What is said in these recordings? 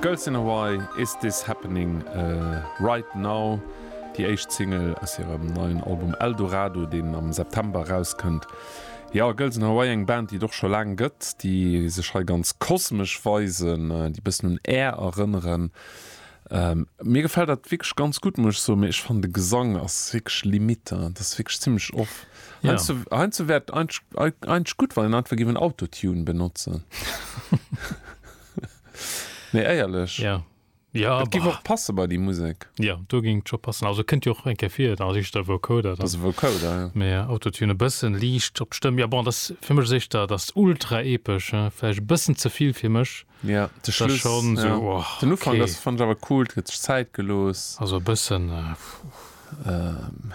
Girls in Hawaii, Is This Happening Right Now? déi éischt Single aus hirem neien Album Eldorado, deen am September erauskënnt. Jo, Girls in Hawaii, eng Band, déi et och scho laang gëtt, déi sech hei ganz kosmesch weisen, déi e bëssen un Air erënneren. Mir gefällt dat wierklech ganz gutt muss ech soen, mee ech fannen de Gesang ass wierklech limite, dat ass wierklech zimmlech off. Ja. Heiansdo wär et eigentlech gutt, wann een einfach géif en Autotune benotzen. Nee, éierlech. Ja. Ja, Dat géif bah. och passe bei déi Musek. Ja, do géing et scho passen. Also kënnt jo och eng Kéier vir, et ass eréischt der Vocoder Dat dann. ass e Vocoder, ja. Mee Autotune e bëssen liicht op d'Stëmm, ja bon, dat ass fir mech ass éischter, dat ass ultra-epesch, vläicht e bëssen ze vill fir mech. Ja, de Schluss, schon so, ja. oh, den Ufang, okay. das fand ich aber cool, huet sech Zäit geloos. Also e bëssen ähm,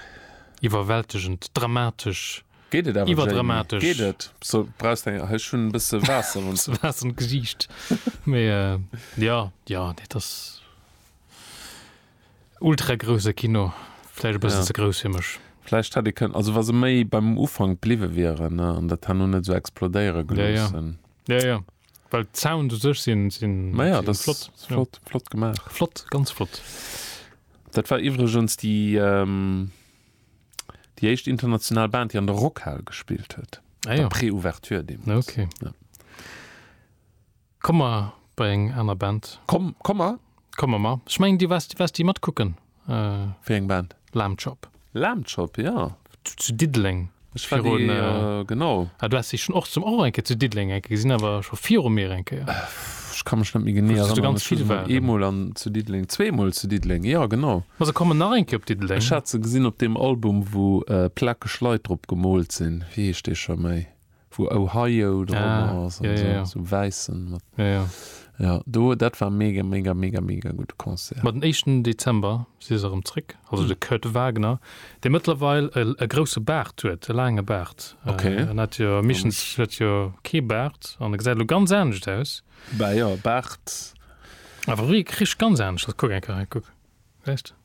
iwwerwältegend, dramatesch. Geet et awer iwwerdramatesch. Geet et so brauchst eng hei schon e bësse Waasser wann s Waasser an d'Gesiicht mee äh, ja ja nee dass ultra grouse Kino vläicht e bëssen ja. ze grouss fir mech. Vläicht hätt ee kënnen also wa se méi beim Ufang bliwwe wieren ne an dat han no net esou explodéiere geloossen. Ja, ja. Ja, ja. Well d'Sound u sech sinn sinn Ma ja, sinn das flott. ist flott, flott gemaach. Flott, ganz flott. Dat war iwwregens déi ähm, déi éischt international Band, déi an der Rockhal gespillt huet. Ah Bei ja, Pré-Ouverture deemools. okay. Ja. Komm mer bei eng aner Band. Komm, komm mer. Komm mer mar. Ech mengen, Dir waars, waars déi matkucken? Wéi eng Band? Lamb Chop. Lamb Chop, jo. Zu Diddeleng. Ech war déi, jo, genau. Ah, du has déi schon och zum, och eng Kéier zu Diddeleng eng Kéier gesinn, awer scho viru mir eng Kéier. Ech ka mech net méi genee erënneren. Ganz vill waren. Eemol an zu Diddeleng, zweemol zu Diddeleng, jo, genau. Ma se kommen nach eng Kéier op Diddeleng. Ech hat se gesinn op deem Album, wou plakeg Leit drop gemoolt sinn. Wéi heescht dee scho méi? wou Ohio dran ass an sou, sou wäissen mat jo do dat war mega mega mega mega gudde Concert. Ma den éischten Dezember si se erëm zréck, also de Kurt Wagner, dee mëttlerweil e grousse Baart huet, e laange Baart. En hat jo meeschtens huet jo kee Baart an e gesäit elo ganz anescht aus. Bah jo, Baart. Awer wi e Krich, ganz anescht aus, kuck eng Kéier hei, kuck. Echt?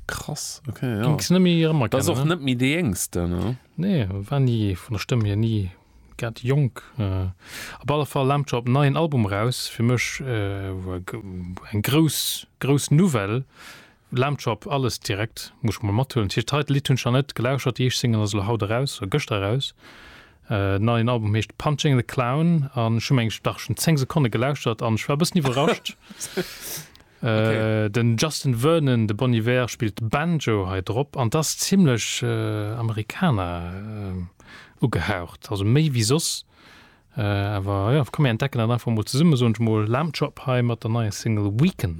Krass, okay, ja. Ging es nicht mehr immer Das ist auch nicht mehr die Jüngste, ne? Nee, war nie, von der Stimme hier nie grad jonk. Äh, op alle Fall laamt scho op neien Album raus, fir mech äh, eng grouss grouss Nouvelle, laamt scho op alles direkt, muss ech mol mathuelen. Tëscht hei d'Lidd hunn ech nach net gelauschert, déi éischt Single ass elo haut eraus, oder gëschter eraus. Äh, neien Album heescht Punching the Clown an ech hu meng ech dach schon 10 Sekonne gelauschtert an ech war e bëssen iwwerrascht. Den Justin Vernon, de Bon Iver, spillt Banjo hei drop an 't ass zimmlech Americana ugehaucht, also méi wéi soss. Awer jo, komm mir entdecken dat einfach mol zesummen, soen ech mol. Lamb Chop hei mat der neier Single Weekend.